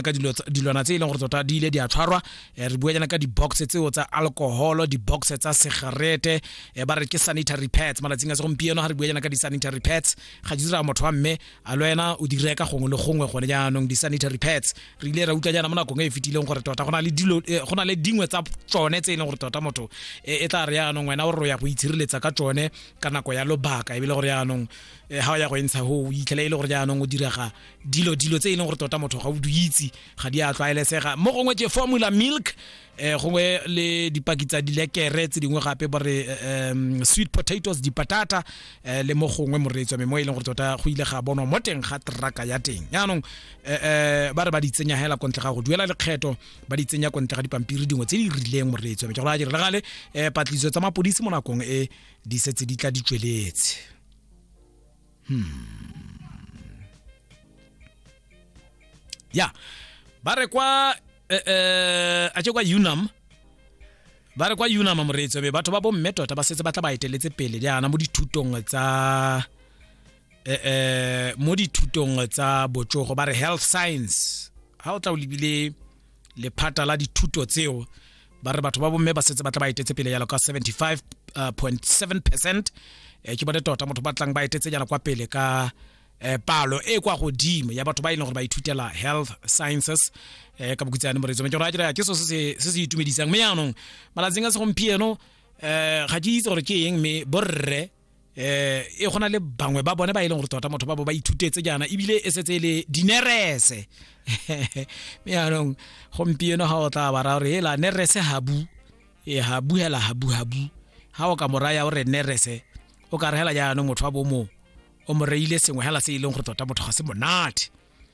ka dilwana tse e leng gore tota di ile di a tshwarwa eh, re bua jana ka di-box tseo tsa alcoholo di-box tsa segarete eh, ba re ke sanitary pads malatsing a segompieno ga re bua jana ka di-sanitary pads ga di dira motho wa mme a le wena o di reka gongwe le gongwe gone jaanong di-sanitary pads re ile ra utlwa jana mo nakong e e fetileng gore tota go na le dilo eh, go na le dingwe tsa tsone tse e leng gore tota motho e tla re jaanong wena o re o ya go itshireletsa ka tsone ka nako ya lobaka ebile gore jaanong ga o ya go e ntsha go o itlhela e le gore jaanong o direga dilo dilo tse e leng gore tota motho ga o di itse ga di a tlwaelesega mo gongwe ke formula milk eh gongwe le dipaki tsa dilekere tse dingwe gape ba re um, sweet potatoes dipatata eh, le mo gongwe moreetswa me mo e leng gore tota go ile ga bonwa mo teng ga traka ya teng yaanong eh, eh, ba re ba di tsenya hela ko ntle ga go duela lekgetho ba di tsenya ko ntle ga dipampiri dingwe tse di rileng moreetswa me ke gore a dire gale eh, patlisiso tsa mapodisi mo nakong e di setse di tla di tsweletse ya ba re kwa eh, eh, a ke kwa unam ba re kwa unam moreetso be batho ba bomme tota ba setse ba tla ba eteletse pele jaana mo dithutong tsa eh, eh, mo dithutong tsa botsogo ba re health science ha o tla o lebile lephata la dithuto tseo ba re batho ba bomme ba setse ba tla ba etetse pele yalo ka 75.7 uh, percent eh, ke bone tota motho ba tlang ba etetse jalo kwa pele ka eh, palo e kwa godimo ya batho ba e leng gore ba ithutela health sciences eh, ka bokutsane moretso me ke gore a kere ke so se se itumedisang mme yaanong malatsing a segompieno eh, ga ke itse gore ke eng mme borre eh e gona le bangwe ba bone ba e leng gore tota motho ba bo ba ithutetse jaana ebile e setse e le dinerese mme yaanong gompieno ga o tla bara gore ela nerese habu e habu hela habu habu ga o ka moraya o re nerese o ka re hela jaanong motho wa bomo o mo reile sengwe hela se e leng gore tota motho ga se monate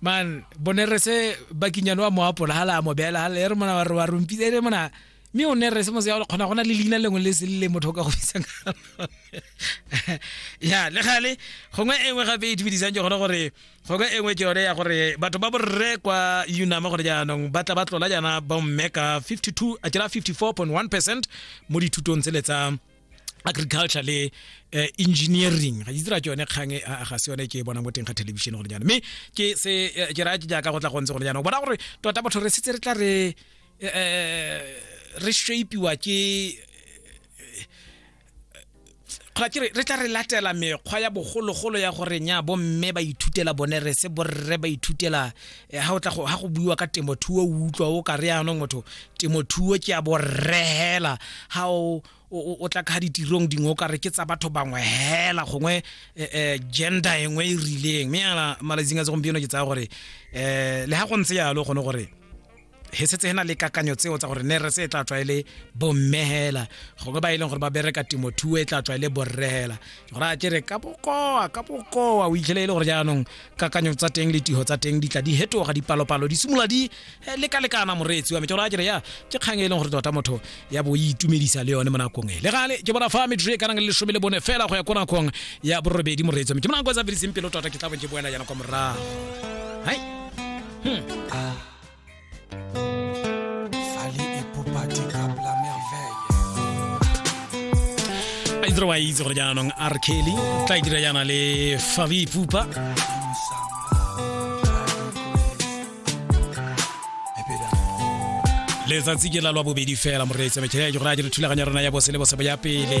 man bone re se bakinyane wa moapola ha la mo bela ha le re mona wa re wa rompile re mona mme o ne re se mo se ya kgona gona le leina lengwe le se le motho ka go bitsa ka ya le gale gongwe e nngwe gape e itumedisang ke gone gore gongwe e nngwe ke yone ya gore batho ba borre kwa unama gore jaanong ba tla ba tlola jaana bomme ka 52 a kera 54.1 percent mo dithutong tsele tsa agriculture le uh, engineering ga itse ra ke yone kgang eh, ga se yone ke e bonang mo teng ga television gone jaana mme ke se eh, ke raya ke jaaka go tla gontse gone jaana o bona gore tota batho re setse re tla re re shapiwa ke kgona ke re tla re latela mekgwa ya bogologolo ya gore nya bomme ba ithutela bone re se borre ba ithutela Eh, ha o tla go ha go buiwa ka temothuo o utlwa o ka re yaanong motho temothuo ke a borehela ha o o tla ka ditirong dingwe o ka re ke tsa batho bangwe hela gongwe eh, eh, gender engwe e rileng mme yana malatsing a segompieno ke tsaya gore um le ha go ntse yalo gone gore he setse he na le kakanyo tseo tsa gore ne re se e tla tswa e le bommehela gongwe ba e leng gore ba bereka temothuo e tla tswa e le borrehela gore a ke re ka bokoa ka bokoa o itlhele e le gore jaanong kakanyo tsa teng le tiho tsa teng di tla di hetoga dipalopalo di simolola di eh, lekalekana moreetsi wa me tsona kere ya ke kgang e leng gore tota motho ya bo e itumedisa le yone mo nakong e le gale ke bona fa metro e kanang le lesome le bone fela go ya ko nakong ya borobedi moreetsi wa me ke monako e sa fediseng pelo tota ke tla bo ke boela yana kwa morago hai hmm. itse wa itse gore jaanong r kelly tla e dira jaana le fabi pupa letsatsi ke la lwa bobedi fela moreetsa mekgele ya ke gore a dire thulaganyo ya rona ya bose le bosebo ya pele